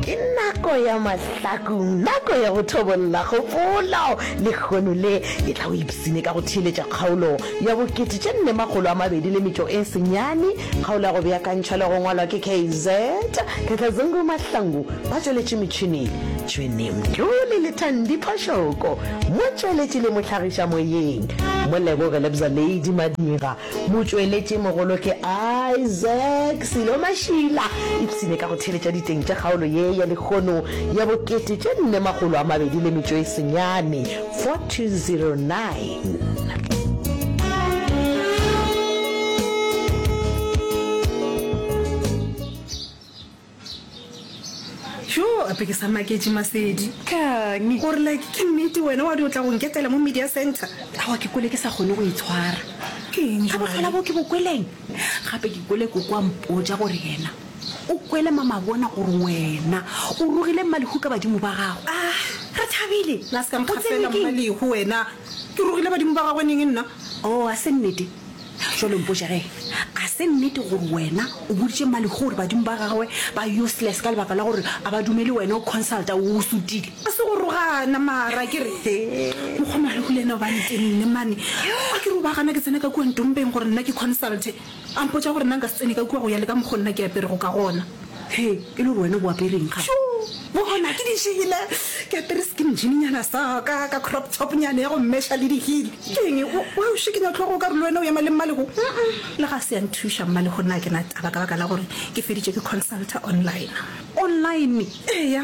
Ke nako ya mahlakong, nako ya go thobolla kgopolo. Lehono le ke tla o ipsine ka go theeletša kgaolo ya bo kete tše nne makgolo a mabedi le metšo e senyane. Kgaolo ya go beakantšhwa le go ngwalwa ke KZ Khakhazungu Mahlangu ba tšweletše metšhineng Tšhwene Mthuli le Thandi Phoshoko, motšweletši le mohlagiša moyeng Moleboge Lebza Lady Madira. Motšweletši mogolo ke Isaac Sello Mashila. Ipshine ka go theeletša diteng tša kgaolo ye ya lekgono ya bo kete tše nne makgolo a mabedi le metšo e senyane, 4209. jo ape ke sa maketše masedi kang gore like ke nnete wena wa di o tla go nketela mo media center awa ke kwele ke sa kgone go itshwara ga botlhola bo ke bo kweleng gape ke kwele koko a mpotsa gore yena o kwele mamabona gore wena o rogile mmalehu ka badimo ba gago ah, re thabile la se ka nkgafela mmalehu wena ke rogile badimo ba gagwe neng nna o oh, a se nnete Bjale mpotše ge ga se nnete gore wena o boditše Mmalehu gore badimo ba gagwe ba useless ka lebaka la gore a ba dumele wena o consulta o o sutile. Ga se go rogana mara ke re mokgwa Malehu le ena o ba ntenne mane a ke re o ba gana ke tsena ka kua ntompeng gore nna ke consulte a mpotša gore nna nka se tsene ka kua go ya le ka mokgwa nna ke aperego ka gona. Hei, e le gore wena o bo apere eng gape? Tjo! Bona, ke di jele. Ke apere skin jean-nyana sa ka, ka crop top-nyana ya go mesha le di-heel. Ke eng e? O, wa o šikinya tlhogo o ka re le wena o ema le Mmalego? Uh-uh. Le ga se ya nthuša, Mmalego nna a ke na taba ka baka la gore ke feditše ke consulta online. Online? Eya.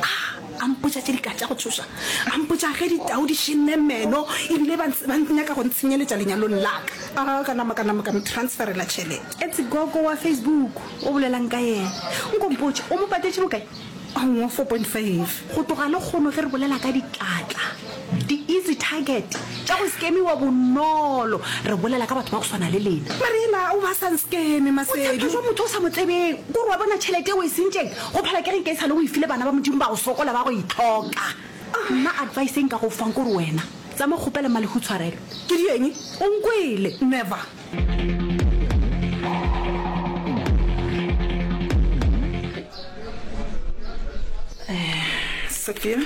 A a mpotša tše di ka tša go tšhoša, a mpotša ge ditau di šinne meno e bile ba ba nyaka go ntshenyeletša lenyalong la ka. A ka nama ka nama ka mo transferela tšhelete. Etse gogo wa Facebook o bolela'ng ka yena? Nko mpotše, o mo patetše bokae? Aowa, four point five. Go tloga lehono ge re bolela ka ditlatla. Di-easy target tša go skemiwa bonolo. Re bolela ka batho ba go swana le lena. Mariela o ba sa nskeme, Masedu. O tshepha jwa motho o sa mo tsebeng. Ko re wa bona tšhelete e o e sentšeng, go phela ke reng ke e sale o e file bana ba Modimo ba go sokola ba go e tlhoka. Nna advice e nka go fang ko re wena tsamaya o kgopele Mma Lehu tshwarelo. Ke di eng? O nkwele? Never. sophia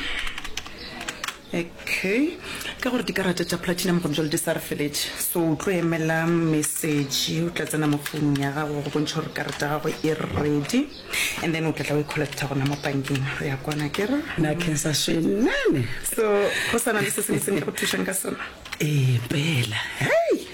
okay ka gore dikarata tša platinum gone jale di sa re feletse so o tlo emela message o tla tsena mo founung ya gago go bontšha gore karata ya gago e ready and then o tla tla o e collecta gona mo bankeng re ya kwana kere na kensa shenene so go sana le se sengwe se nka go thušang ka sona ee pela hei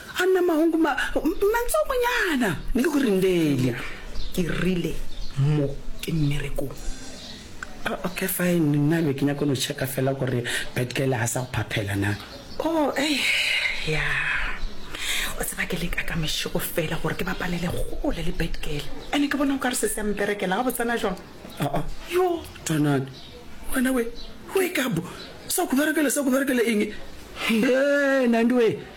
Anna Mahungu, ma, mantso monyana. Ne ke go rindele. Ke rile, Mo ke mmerekong. Oh, okay, fine. Nna be ke nyako no checka fela gore bad girl ha sa go phaphela na. Oh, ei, ya. O tseba ke leka ka mešego fela gore ke bapalele kgole le bad girl. Ene ke bona o ka re se se a mperekela gabotsana jwang. Oh, oh, yo, Twanane. Wena we, wake up. Sa go berekela, sa go berekela eng? He, Nandi we.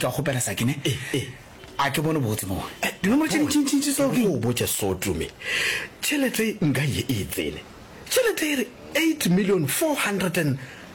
ka kgopela sakene a ke bone botse mo dinomoro tše dintšintšintši tseo ke o botša sotume tšhelete nka ye e tsene tšhelete e re eight million four hundred and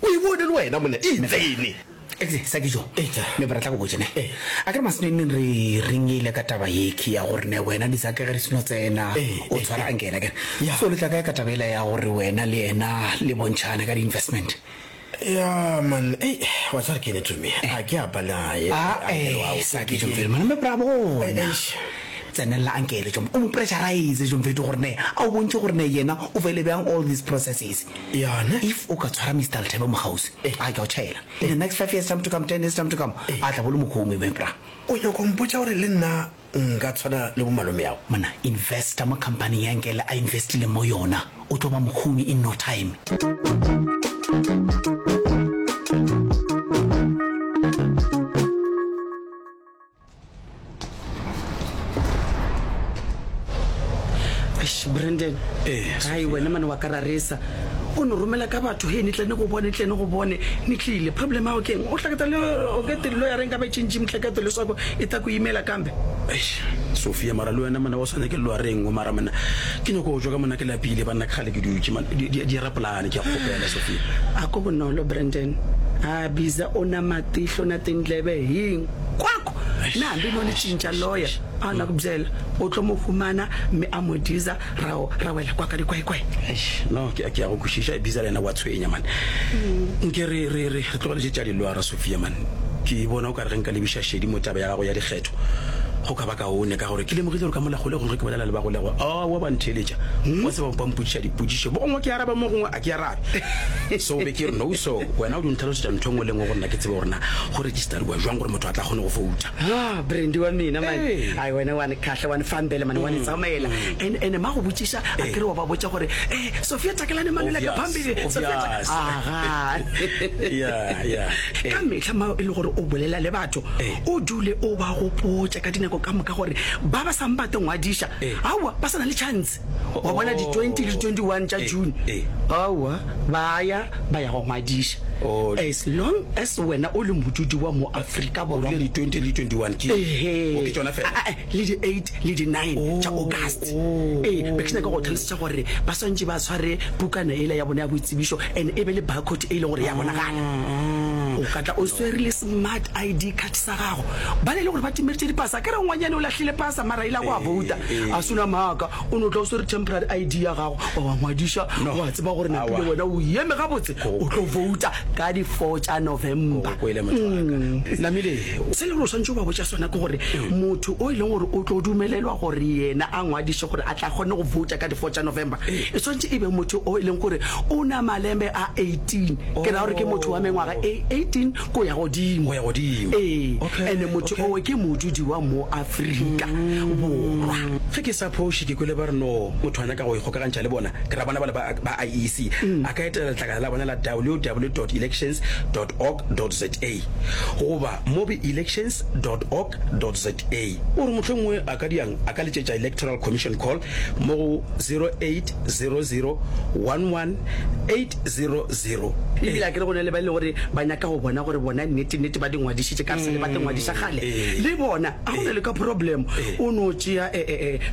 O e bone le wena monna e ntsene. Eupša sa dijo, me ba re tla go botša ne. A ke re Maseneneng re renyile ka taba yekhi ya gore ne wena le Zake ge re seno tsena o tshwara anke yena ke re. So le tla kae ka taba yela ya gore wena le yena le bontšhane ka di-investment? Ya man ei wa tseba re kene to me a ke apa naye. Ae sa dijo mfethu mara me bra bona. Tsenelela anke ele tšo o mo pressurize tšo mfethu gore ne a o bontšhe gore ne yena o fele bjang all these processes. Yona if o ka tshwara Mister Lethebe mokgaosi a ke a o tšhaela in the next five years time to come ten years time to come a tla bo le mokgomoi my bra. O nyaka go mpotša gore le nna nka tshwana le bo malomeago? Monna investor mo company ya Nkele a investileng mo yona o tlo ba mokgomoi in no time. brandon gai wena mane wa ka raresa o ne romela ka batho he ne tlane go bone tlane go bone ne tlile problem ao keng o tlaketa le okete lelo ya reng ka ba tšentši motlakete le swako e ta ko imela kambe sophia mara le wena mona o swane ke lelo ya reng o mara mona ke nyako o jo ka mona ke lapile banna ke gale ke dutše di rapolane ke ya gopela sophia a ko bonolo brandon a biza o na matihlo na tendlebe heng kwako na hambi no ni cinca loya a na ku byela u tlo mu humana mi a mu diza ra ra wela kwaka likwaikwai no ke ke ya go kwišiša biza le yena wa tshwenya mane mm. nke re re re re tlogeletse tša liloa ra sofia mane ke bona o ka re ge nka lebiša šedi mo taba ya gago ya dikgetho go ka ba kaone ka gore ke lemogile gore ka molagolego ge ke bolela le bagolego a wa ba ntheletša hmm? wa seba ba mpotsiša dipotsišo bo gongwe ke araba mo gongwe a ke arabe so be ke re no so wena o di ntlhalosetša ntho e ngwe le ngwe gore na ke tsebe gorena go register Tari wa jwang gore motho a tla kgone go fouta? Ah, Brandy wa mina man. Hey. Ai wena wa ni khahla, wa ni fambela man, wa ni tsamaela. And and ma go botsiša, a kere wa ba botša gore, "Eh, Sophia takelane mano le ka Obvious, phambili." Sophia taka- obvious. Aha. Yeah, yeah. Ka Eh. mehla ma e le gore o bolela le batho, Eh. o dule o ba gopotša ka dinako ka moka gore ba ba sang ba tlo ngwadiša, Eh. aowa, ba sa na le chance. wa bona di 20 le 21 tša june aowa ba ya ba ya go ngwadiša as long as wena o le modudi wa mo aforika borwa le di 20 le 21 ke Ehe. ke tsona fela Ah, ah, le di 8 le di 9 tša august ee because nyaka go tlhalosetša gore ba swantše ba tshware pukana ele ya bona ya boitsebišo and e be le barcode e leng gore ya bonagala o ka tla o swere le smart id card sa gago ba ne e le gore ba timeritše dipasa ke re ngwanyane o lahlile pasa mara e la go a bouta a sona maaka o ne o tla o swere temporary id ya gago wa wa ngwadiša go a tseba gore napile wena o eme gabotse o tlo bouta ka di-four tša november namile se le gore o swantse o ba botša sona ke gore motho o e leng gore o tlo dumelelwa gore yena a ngwadiše gore a tla kgone go bouta ka di-four tša november e swantse e be motho o e leng gore o na malembe a 18 ke ra gore ke motho wa mengwaga e 18 Go ya godimo. Go ya godimo. Ee, Okay, ene motho okay. owe ke modudi wa mo Afrika Borwa. Ge ke sa phoše ke kwele ba re no motho a nyaka go ikgokagantšha le bona, ke ra bona bale ba ba IEC a ka etela letlakala la bona la www elections org za goba mobi elections org za. O re mohlomongwe a ka diang a ka letšetša Electoral Commission call mo go 0800 11 882. 00. Ebile a ke re go na le ba e le gore ba nyaka go bona gore bona nnete-nnete ba di ngwadišitše ka sele ba te ngwadiša kgale le bona. A go na le ka problem o no tšea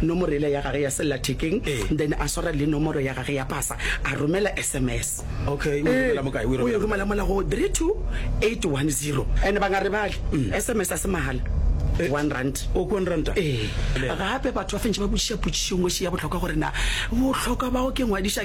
nomoro ela ya gage ya sellathekeng then a swara le nomoro ya gage ya pasa a romela sms. Okay, o e romela mo kae? O e romela mola go 32810. And ba nga rebale sms a se mahala. One rand. O one rand. Ee. Gape batho ba fentše ba botšiša potšišong oše ya bohlokwa gore na bohlokwa bao ke ngwadiša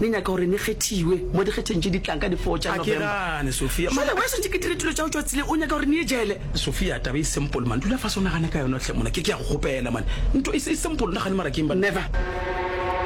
Ne nyaka gore ne kgethiwe mo dikgetheng tše di tlang ka di four tša November. Ga ke gane, Sophia. Jale why swantše ke dire dilo tšao tšwa tseleng? O nyaka gore ne ye jele? Sophia, taba e simple man. Dula fase o nagane ka yona hle mona. Ke ke ya go kgopela man. Nto e simple, o nagane mara keng banna. Never.